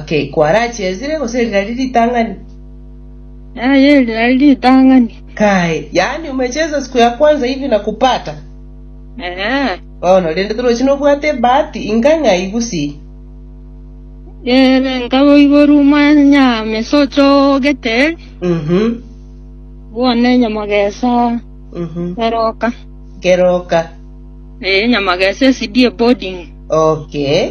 Okay, kwarachesire gose eri nari ritang'ani? Aye, eri nari ritang'ani. Kae, yaani umecheza siku ya kwanza hivi na kupata? Ee. Bono, rende toroche nobwate ebahati inga ng'ai gusii? Ere nkaboiborwa omwanya mesa ochogete eri, Mhm, bono enyamagesa mhm. eroka. Keroka. Ee, enyamagesa esidie boarding. Okay.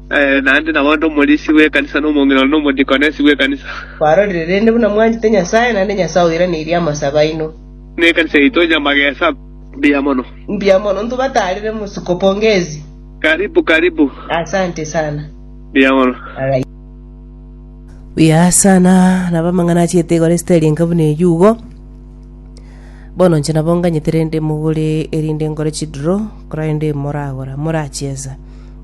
Naende nabondo omorisia bw'ekanisa, na omong'ina one, na omodikonesi bw'ekanisa. Kwarorire rende buna mwanchete Nyasae, naende Nyasae oiranerie amasabe aino. Na ekanisa yaito nyamagesa mbuya mono. Mbuya mono, ntubatarire mosiko, pongezi. Karibu, karibu. Asante sana. Mbuya mono. Alright. Buya sana nabo amang'ana achiete igoro esitari enka buna eyio igo bono inche nabo nganyete rende mogore erinde ngore chidro korende moragora morachiesa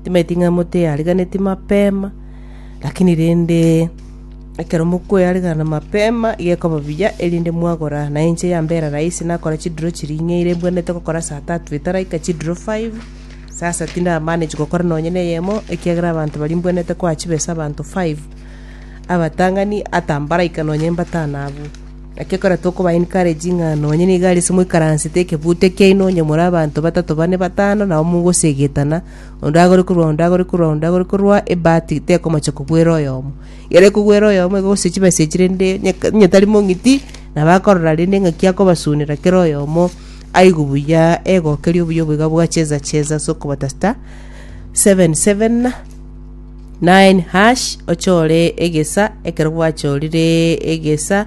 Timaeti ng'a moteariganeti mapema, lakini rende ekero mokoearigana mapema, igo ekoba buya, erinde mwagora. Na inche yambera rahisi nakora chidiro chiria ing'eire mbwenerete gokora saa tatu etaraika chidiro five, sasa tindi na manage gokora nonye na eyemo, ekiagera abanto baria mbwenerete koa chibe ase abanto five, abatang'ani ata mbaraika nonye mbatano abwo. Naki ekero tokoba encourage ng'a nonye nigo arese moikaransete ekebuto ekiaino onye more abanto batato bane batano nabo mogosegetana, onde agore korwa onde agore korwa onde agore korwa, ebahati tekomocha kogwera oyomo. Ekero ekogwera oyomo igo gose chibesa echi rende onye onye tari mong'iti, nabo akorora rende ng'aki akobasunera kera oyomo aigwe buya egokeria obuya obo iga bwa cheza cheza ase okobatasta seven seven. Nainhash ochore egesa ekero gwachorire egesa,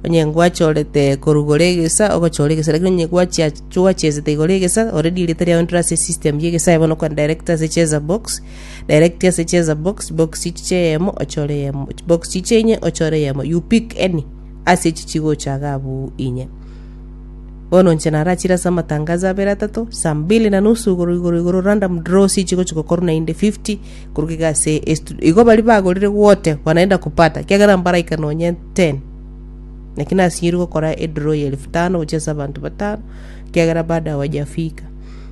onye gwachorete korugora egesa ogochora egesa lakini onye gwachia gwachesete igoro egesa already erieta riao ndire ase esystem ya egesa aye bono okore direct ase cheza box, direct ase cheza box, box chiche eyemo ochore eyemo, box chiche enye ochore eyemo you pick any ase echi chigocha iga abwo inye. Bono inche narachire ase amatangazo abere atato, saa mbili na nusu igoro igoro igoro random draw sichi gochia gokorwa naende 50 korwa iga ase estudio. Igo baria bagorire gwote banaenda kupata kiagera mbaraika nonye 10. Naki nasinyiri gokora edraw ya elfu tano gochia ase abanto batano kiagera bado hawajafika.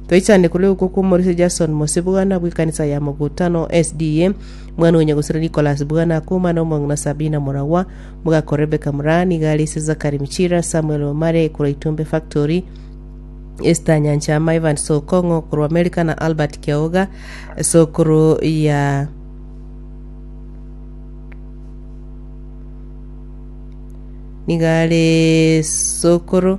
Toichande korwa iko kwa Omorisia Jason Mose Bwana bwe ekanisa ya Mogutano SDA, mwana o Nyagusera Nicholas Bwana Akuma na omong'ina Sabina Muragwa, Mogakora Rebecca Moraa nigo are ise Zachary Michira, Samuel Omare korwa Itumbe Factory, Esther Nyanchama, Evans Okong'o korwa Amerika na Albert Kiaoga, sokoro ya nigo are sokoro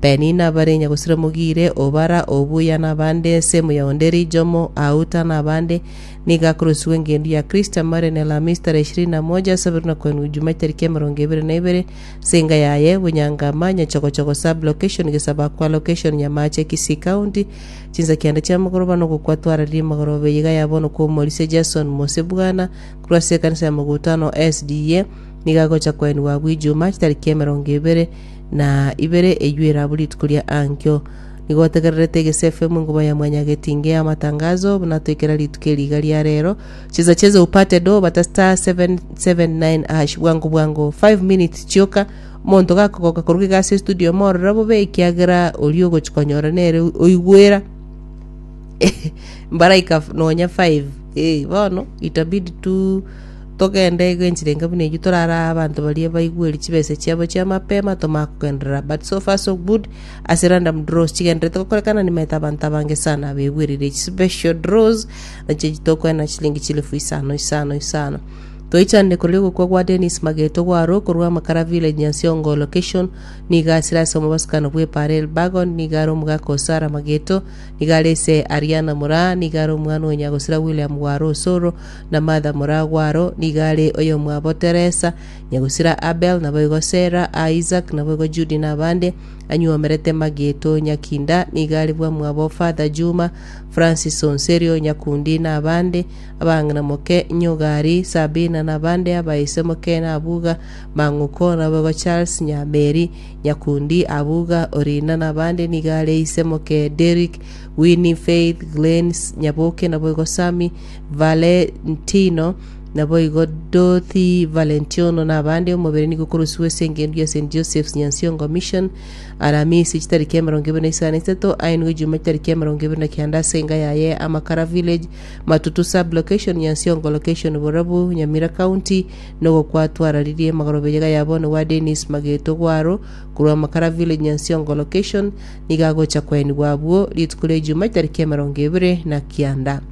Penina abarenge gosira mogire obara obuya nabande ense muya onde rijomo auta nabande, nigo akorosugwa engendu ya Kristo amare ne Lamis tarehe ishirini na moja ase abere na kwenwa ijuma etariki emerongo ebere na ebere ase enga yaye Bunyangama, Nyachogochogo Sub-location Gesabakwa Location Nyamaache Kisii County chinsa kianda chia amagoroba na ogokwa twararire emagoroba eyiga ya bono kwa Omorisia Jason Mosebwana korwa ase ekanisa ya Magutano SDA nigo agocha kwenigwa abwo ijuma chitariki emerongo ebere na ibere eyio erabu rituko ria Ankio. Nigo otegererete egesefu emo ingoba ya mwanyagetinge ya amatangazo, buna toikera rituko eri iga ria rero. Chesa chesa upate do, bata star 779 hash bwango bwango 5 minutes chioka. Omonto gakogoka koruga iga ase estudio omorore bobe ekiagera oria ogochi konyora nere oigwera mbaraika f- nonya 5 eh, bono itabidi tu togende iga enchera enke buna eyio torare aa abanto baria baigweri chibese chiabo chia mapema tomanye kogenderera, but so far so good ase random draws chigendererete gokorekana nimanyete abanto abange sana begwerire echi special draws nache echi tokoena chilingi chilifu isano isano isano toichanire korwa ogokwa gwa Dennis Mageto gwarwo korwa Amakara village Nyansiongo location nigo asire ase omobasukano bwa Epara Elbagon nigo are omogaka o Sarah Mageto nigo are ise Ariana Muraa nigo are omwana o Nyagosira William Gwaro Osoro na Martha moragwo aro, nigo are oyomwabo Teresa, nyagusira Abel, naboigo Sera, aa Isaac, naboigo Jude na abande, anyuomerete Mageto Nyakinda, nigo are bwamwabo Father Juma, Francis Onserio, Nyakundi na abande, abang'ina moke, Nyogari, Sabina na abande, abaise moke na abuga, Mang'uko, naboigo Charles, Nyameri, Nyakundi, abuga, Orina na abande, nigo are ise moke Derrick, Winnie, Faith, Glenys, Nyaboke, naboigo Sammy, Valentino, naboigo Dorothy Valentiono na abande, omobere nigo okorosiwa ase engencho ya St. Joseph's Nyansiongo Mission, Aramisi chitariki emerongo ibere na isano na isato, aye nigo Juma chitariki emerongo ibere na kianda ase enga yaye ya Amakara Village, Matutu Sub-location, Nyansiongo Location, Borabu, Nyamira County, na ogokwatwararirie magorobeyaga ya bono gwa Dennis Mageto Gwaro, korwa Amakara Village, Nyansiongo Location, nigo agocha kwaenigwa abwo rituko ria Ijuma chitariki emerongo ibere na kianda.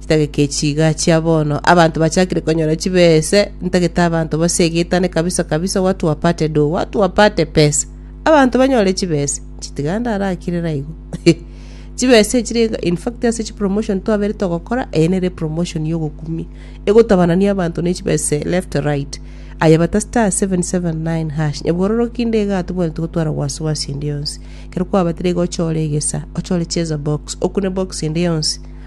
Chitagete chiga chia bono, abanto bachakire konyora chibese, ntagete abanto base egetane kabisa kabisa, watu wapate do, watu wapate pesa, abanto banyore chibese. Chitiga ndarakirera igo. chibese chire in fact ase chi promotion twabere togokora, eye nere promotion ya ogokumia. Egotabanania abanto ne chibese left right. Aye bata star 779 hash. Nyabororoki nde iga atobwate gotwara wasiwasi ende yonsi. Kero kwabatire iga ochore egesa, ochore cheza box, okune box ende yonsi.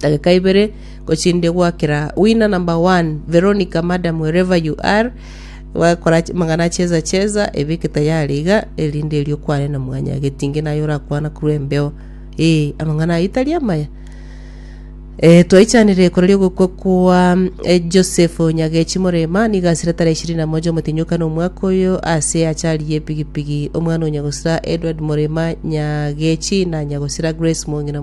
Dageka ibere gochinde gwakera winner number one Veronica madam wherever you are wakora ch- mang'ana acheza cheza ebeke tayari iga erinde erio kwane na mwanya getinge naye orakwana korwa embeo ee amang'ana aye tari amaya Eh, twaichanire ekoro riogokwa kwa eh, joseph nyagechi morema niga asire tara ishirini na moja omotinyoka na omwaka oyo ase achari y'epigipigi omwana onyagosira edward morema nyagechi na nyagosira grace mong'ina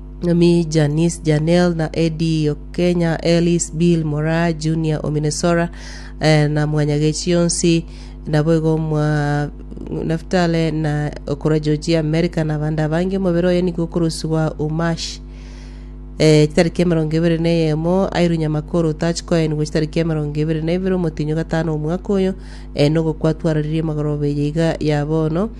Nomi, Janice, Janelle, na Eddie Okenya, Ellis, Bill, Moraa, Junior, Ominesora, eh, na Mwanyagechi yonsi, naboigo mwa Naftale na okora Georgia, America, na abande abange omobere oye nigo okorosibwa Umash eh, chitariki emerongo ebere na eyemo airu Nyamakoro otachi koenigwa chitariki emerongo ebere na ibere omotinyo gatano omwaka oyo eh, nogokwa twararirie magoroba eye iga ya bono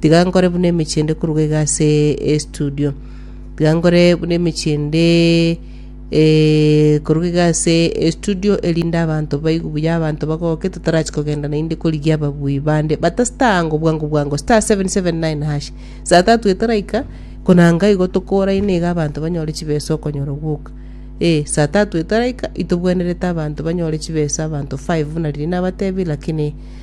Tiga nkore buna emechie ende koruga iga ase estudio. Tiga nkore buna emechie ende eh, koruga iga ase estudio erinde abanto baigu buya abanto bagoke totarachi kogenda naende korigia ababui bande bata star ango bwango bwango star 779 hash saa tatu etaraika konanga igo tokoraine iga abanto banyore chibesa okonyora gwoka eh saa tatu etaraika itobwenerete abanto banyore chibesa abanto 5 buna riria nabatebie lakini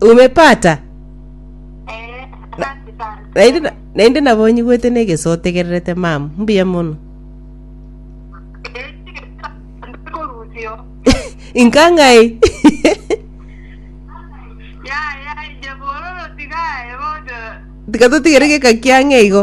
Umepata? Naende na- naende nabonyigwete na egeso otegererete mam mbuya mono inka ng'ai tiga totigere geka kiang'e igo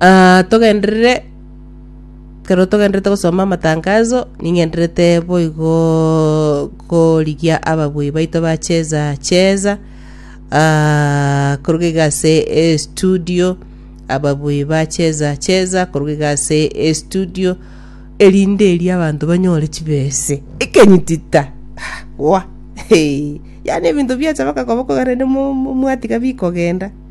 Ah, togenderere ekero togenderete gosoma amatangazo, ning'enderete boigoo korigia ababui baito bacheza cheza ah, koruga iga ase estudio, ababui bacheza cheza koruga iga ase estudio, erinde eria abanto banyore chibese, ekenyitita ah gwa, hee. Yaani ebinto biacha mpaka koba korende mo- mo- mwatiga bikogenda.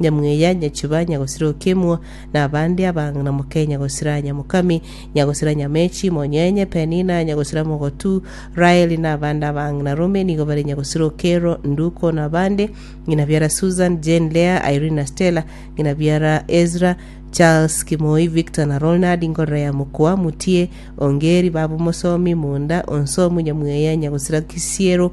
Nyamweya, Nyachiba, Nyagosira Okemwa, na abande abang'ina moke, Nyagosira Nyamokami, Nyagosira Nyamechi, Monyenye, Penina, Nyagosira Mogotu, Raeli, na abande abang'ina rome nigo bare Nyagosira Okero, Nduko, na abande, ng'ina biara Susan, Jane, Leah, Irene na Stella, ng'ina biara Ezra, Charles, Kimoi, Victor na Ronald, Ngorora ya Mokoa, Mutie, Ongeri, Baba Omosomi, Munda, Onsomu, Nyamweya, Nyagosira Kisiero,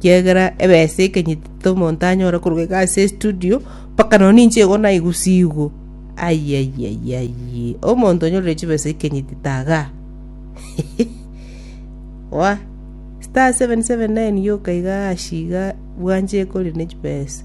Kiagera ebesa ekenyiti tomonto anyore koruga iga ase estudio, mpaka nonye ninche igo naigusigwe. Ayayayayii, omonto onyorire chibesa ekenyiti tagaa. Wa, star seven seven nine yoka igaa ashi igaa bwanchire kore ne chibesa.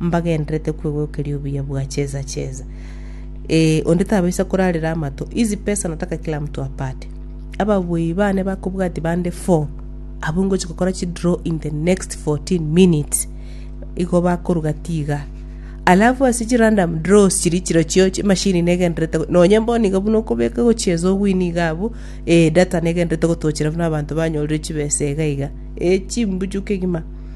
mbagenderete kwegokeria obuya bwa chesa chesa. Ee, onde tabaisa korarera amato. Hizi pesa nataka kila mtu apate. Ababuyi bane bakobwati bande four, abwo ngochi gokora chidraw in the next 14 minutes. Igo bakoruga tiga. Alafu ase chirandom draws chiri chirochio chimashini negenderete nonye bono iga buna okobeka gochiesa ogwini iga abwo eh, data negenderete gotochera buna abanto banyorire chibesa iga iga. Eh, chimbuchu kegima.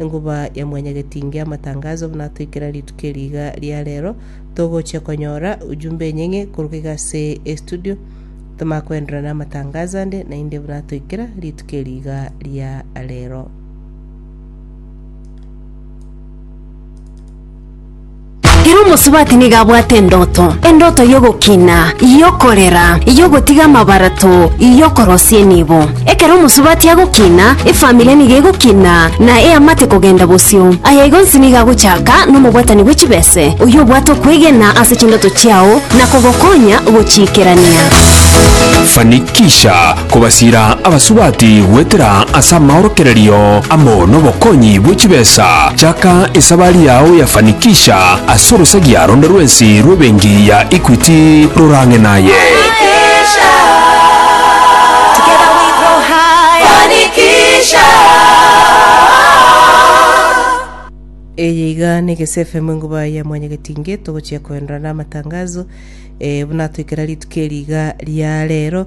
Enguba ya mwanyagetinga y'amatangazo buna toikera rituko eri iga ria rero, togochia konyora ujumbe enyeng'e korwa iga ase estudio. Toma koenderera namatangazo ande naende buna toikera rituko eri iga ria rero. Ere omosubati nigo abwate endoto, endoto y'ogokina, y'okorera, y'ogotiga amabarato, y'okorosia enibo. Ekero omosubati agokina, efamiri nigo egokina, na eamate kogenda bosio. Aya igo onsi nigo agochaka nomobwatani bwe chibese, oyio obwate okwegena ase chindoto chiao na kogokonya gochiikerania. Fanikisha kobasiira abasubati goetera ase amaorokererio amo nobokonyi bwe chibesa, chaka esabari yao ya fanikisha ase orosagia ronde rwensi rw'ebenki ya Equity rorang'e naye. Eye iga nigo ase FM Enguba ya Mwanyagetinge togochia koenora namatangazo, eh, buna atoikera rituko eri iga ria rero.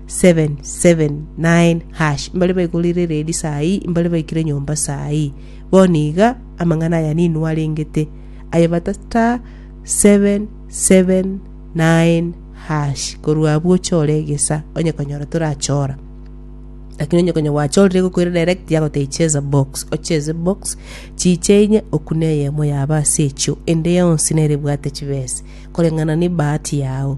779#, mbare baigorire redi saa ii, mbare baikire nyomba saa ii. Bono iga amang'ana aya ninwe arengete, aye bata star 779#, korwa abwo ochore egesa, onye konyora torachora. Lakini onye konya gwachorire egokoira direct yagotebia cheza box, ocheze box, chiche inye okune eyemo yaba ase echio, ende yonsi nere ebwate chibesa, koreng'ana ne ebahati yao.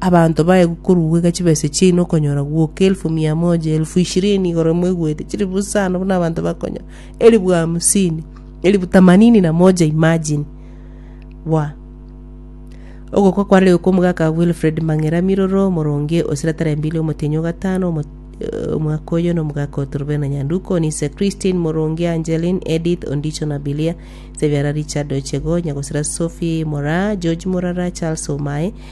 Abanto baye gokoruegwa chibesa chiaino okonyora gwoka elfu mia moja, elfu ishirini igoro moigwete, chilifu isano buna abanto bakonyora, elifu hamsini, elifu tamanini na moja imagine. Bwa. Ogokwa kwa Leo kw'omogaka Wilfred Mang'era Miroro, Omoronge o Siratara Embili Omotienyi o Gatano, Omo- eh, Omwaka oyo n'omogaka oito Rubena Nyanduko, Onise Christine Moronge, Angeline, Edith, Ondicho na Bilia, Sebiara Richard Ochego, Nyagosira Sophie Moraa, George Morara, Charles Omae,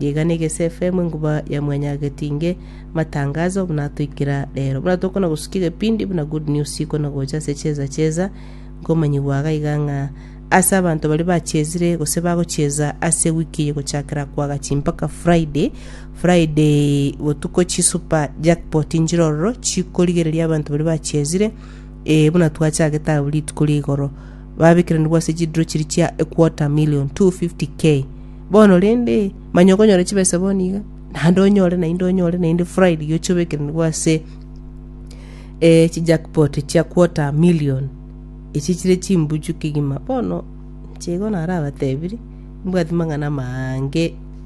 Nigo negese efemu enguba ya mwanyagetinge matangazo buna atoikera rero. Buna tokona gosukia egepindi buna good news ikona gocha ase chieza chieza nkomanyigwa iga iga ng'a ase abanto baria bachiezire gose bagochieza ase wiki eye gochakera kwagachi mpaka Friday. Friday botuko chi super jackpot nchirororo chikorigereria abanto baria bachiezire eh, buna twachagete abwo rituko ria igoro. babekeranigwe ase chidiro chiria chia equota million, 250K. Bono rende, manya okonyora chibesa bono iga, naende onyore, naende onyore, naende Friday oche obekeranigwe ase eh, chijackpot chia quarter million. Echi chire chimbuchu kegima. Bono, inche igo narabatebirie, mbwati mang'ana amange.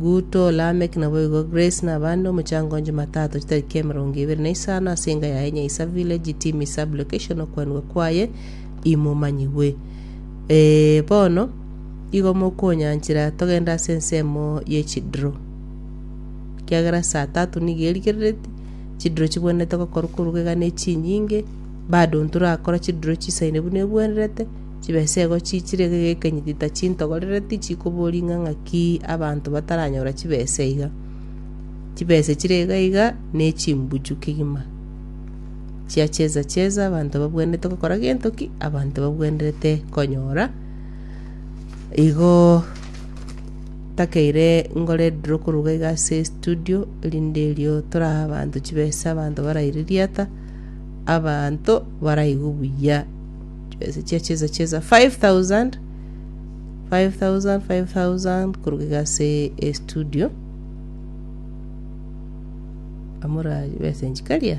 Guto, Lamek, naboigo Grace na abande omochango on Jumatatu chitariki emerongo ebere na isano ase enga yaye Nyaisa Village Timi Sub Location okwanigwa kwaye imomanyigwe. Ee, bono igo mokonyanchera togende ase ensemo ye chidro. Kiagera saa tatu nigo erigerereti, chidro chibwenerete gokorwa koruga iga ne chinyinge, bado ntorakora chidro chisaine buna ebwenerete, Chibesego chiichire gegekenyi titachintogorere tichikobori ng'a ng'aki abanto bataranyora chibesa iga. Chibesa chire iga iga nechimbuchu kegima chia cheza cheza abanto babwenerete gokora gento ki abanto babwenerete konyora igoo takeire ngore ndire koruga iga ase estudio erinde erio torae abanto chibesa abanto baraire riata abanto baraigu buya. Chibesa chia chesa chesa 5000 5000 5000 koruga iga ase estudio amora chibesa enchi karia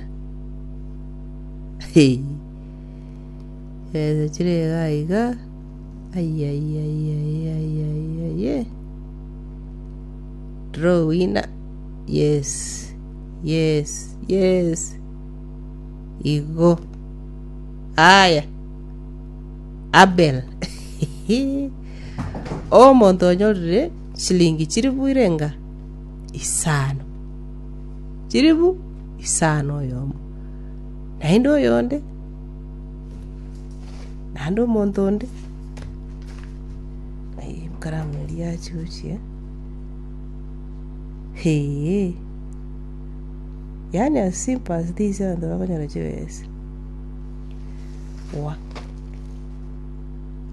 Hey. chibesa chire iga iga ayayayayayayayay draw winner yes yes yes igo Aye, Abel, omonto onyorire chilingi chilifu irenga isano, chilifu isano oyomo, naende oyonde, naende omonto onde, aye ekaramu eria achuchire, eeh, yaani as simple as this abanto bakonyora chibesa. Wa.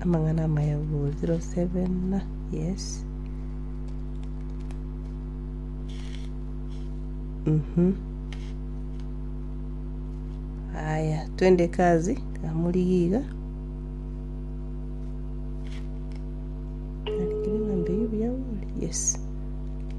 Amang'ana amaya 070 yes mhm aya twende kazi kamurigia iga Arikire ng'a mbeyo biauri yes